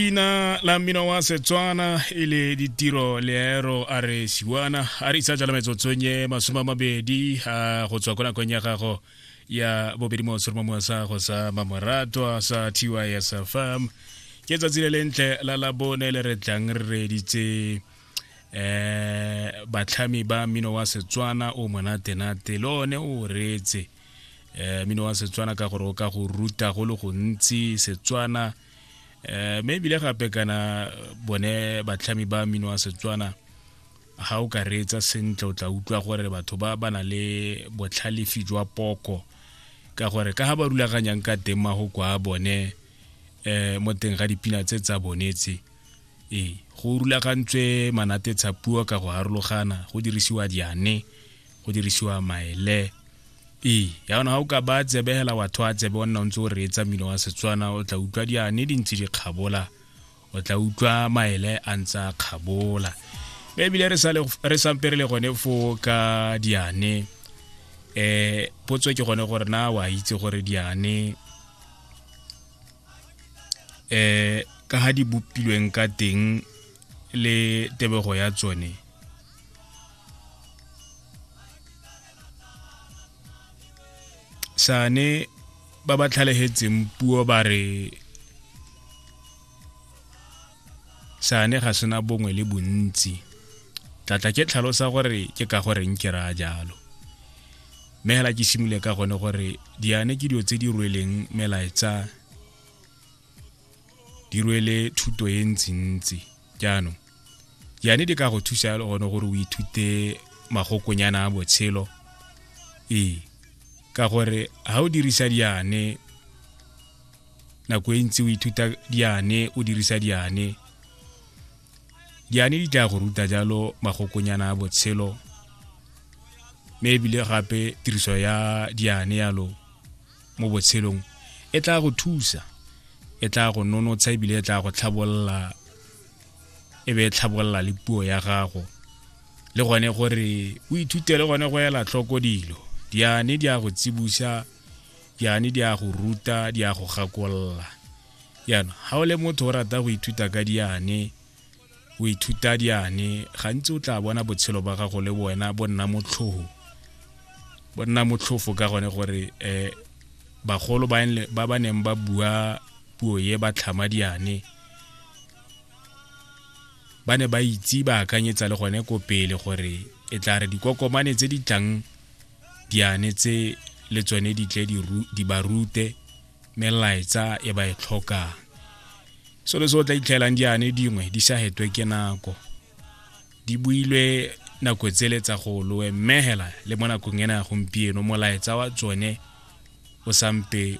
leina la mmino wa setswana e le ditiro leero a re siwana a re isa jala metsotsong e masome a mabedi a go tswa ko nakong ya gago ya bobedi mo seroma mo sa go sa mamoratwa sa tysfm ke tsatsi le lentle la labone le re tlang re reditse eh batlhami ba mmino wa setswana o monatenate le one o reetse eh mmino wa setswana ka gore o ka go ruta go le gontsi setswana eh, mme ebile gape kana bone batlhami ba mmino wa setswana ga o ka reetsa sentle o tla utlwa gore batho ba ba na le botlhalefi jwa poko ka gore ka ga ba rulaganyang ka teng mago kwa bone um mo teng ga dipina tse tsa bonetse ee go rulagantswe manate tshapuo ka go harologana go dirisiwa diane go dirisiwa maele e yaona ga o ka ba tsebe hela wa thoa tsebe o nna o ntse o reetsa mmino wa setswana o tla utlwa diane di ntse di kgabola o tla utlwa maele a ntse a kgabola mme ebile re sampe re le gone foo ka diane um potso ke gone gore na wa itse gore diane um ka ga di bopilweng ka teng le tebego ya tsone sane ba ba tlhalegetseng puo ba re sane ga sena bongwe le bontsi tlatla ke tlhalosa gore ke ka goreng ke raya jalo mme fela ke simole ka gone gore diane ke dilo tse di rweleng melaetsa di rwele thuto e ntsintsi jaanong yane di ka go thusa le gone gore o ithute magokonyana a botshelo ee ka gore ga o dirisa diane nako e ntsi o ithuta diane o dirisa diane diane di tla go ruta jalo magokonyana a botshelo mme ebile gape tiriso ya diane yalo mo botshelong e tla go thusa e tla go nonotsha ebile e tla go tlhabolola e be e tlhabolola le puo ya gago le gone gore o ithute le gone go ela tlhoko dilo diane di a go tsibusa diane di a go ruta di a go gakolola jaanong ga o le motho o rata go ithuta ka diane o ithuta diane gantsi o tla bona botshelo ba gago le wena bo nna motlhogo bo nna motlhofo ka gone gore um bagolo ba ba neng ba bua puo ye ba tlhama diane ba ne ba itse ba akanyetsa le gone ko pele gore e tla re dikokomane tse di tlang diane tse le tsone di tle di ba rute melaetsa e ba e tlhokang selo se o tla itlhelang diane dingwe di sa hetwe ke nako di builwe nako tsele tsa go loe mmegela le mo nakong ena ya gompieno molaetsa wa tsone o sampe